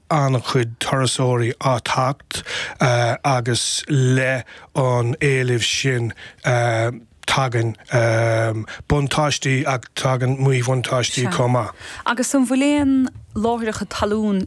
an-chuid turasóirí ag teacht agus leis an éileamh sin tagann buntáistí ach tagann míbhuntáistí chomh maith. Agus an bhfuil aon láithreacha talún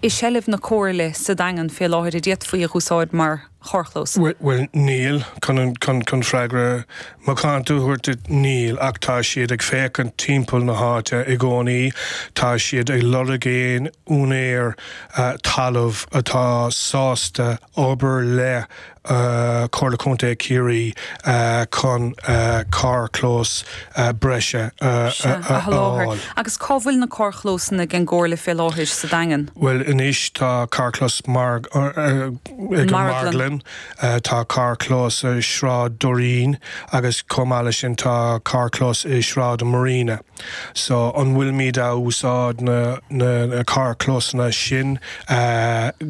i seilbh na Comhairle sa Daingean fé láthair go d'fhéadfaí a úsáid mar. charrchlós. Bhuel, níl, chun chun freagra macánta a thabhairt duit, níl, ach tá siad ag féachaint timpeall na háite i gcónaí, tá siad ag lorg aon úinéir talaimh atá sásta obair le Comhairle Contae Chiarraí chun carrchlós breise a sholáthar. Sea, agus cá bhfuil na carrchlósanna ag an gComhairle fé láthair, sa Daingean? Bhuel anois, tá carrchlós ag an marglann, tá carrchlós i Sráid Doirín agus chomh maith leis sin tá carrchlós i Sráid Marina. So an bhfuilimid a' úsáid na na carrchlósanna sin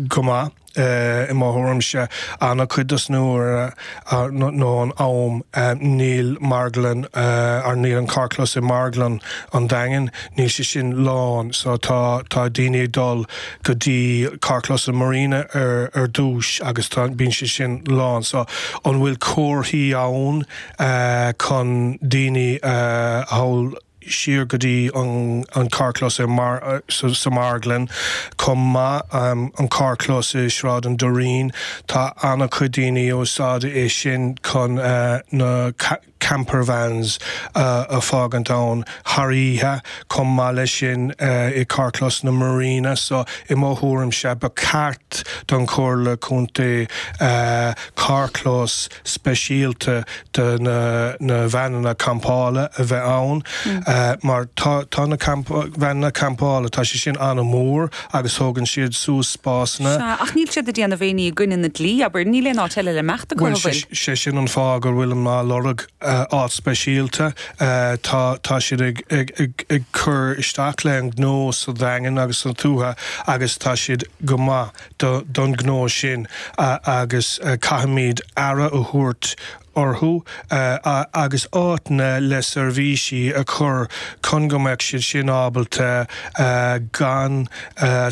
go maith? I mo thuairimse ana-chuid dos na uaire nó an am níl marglann or níl an carrchlós i marglann an Daingin, níl sé sin lán so tá tá daoine ag dul, go dtí carrchlós an Marina ar dtúis agus bíonn sé sin lán so an bhfuil comharthaí ann chun daoine a chur siar go dtí an carrchlós sa marglann chomh maith an carrchlós i Sráid an Doirín tá an-chuid daoine ag úsáid é sin chun na campervans a fágaint ann thar oíche. Chomh maith leis sin, i gcarrchlós na Marina so, i mo thuairimse, ba cheart don Chomhairle Contae carrchlós speisialta do na veaineanna campála a bheith ann mar tá na veaineanna campála, tá sé sin an-mhór. agus tógann siad suas spásanna. Sea, ach níl siad ag déanamh aon ní i gcoinne na dlí, abair, níl aon áit eile le himeacht acu, an bhfuil? Bhuel, sé sin an fáth gur bhfuil mé ag lorg áit speisialta. Tá siad ag cur isteach leis an gnó sa Daingean agus sa tuaithe agus tá siad go maith don gnó sin agus caithfimid aire a thabhairt orthu agus áiteanna le seirbhísí a chur chun go mbeadh siad sin ábalta gan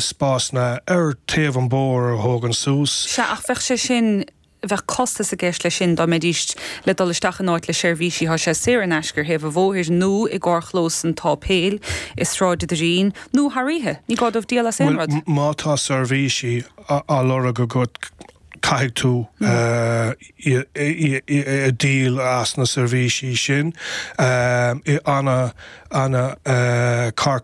spásanna ar thaobh an bhóthair a thógaint suas. Sea, ach bheadh sé sin, bheadh costas i gceist leis sin dá mbeidís le dul isteach in áit le seirbhísí, tá sé saor in aisce ar thaobh an bhóthair nó i gcarrchlós an tsáipéil i Sráid a' Doirín, nó thar oíche. Ní gá dóibh díol as aon rud. Bhuel, má tá seirbhísí á lorg agat, caithfidh tú díol as na seirbhísí sin. An carr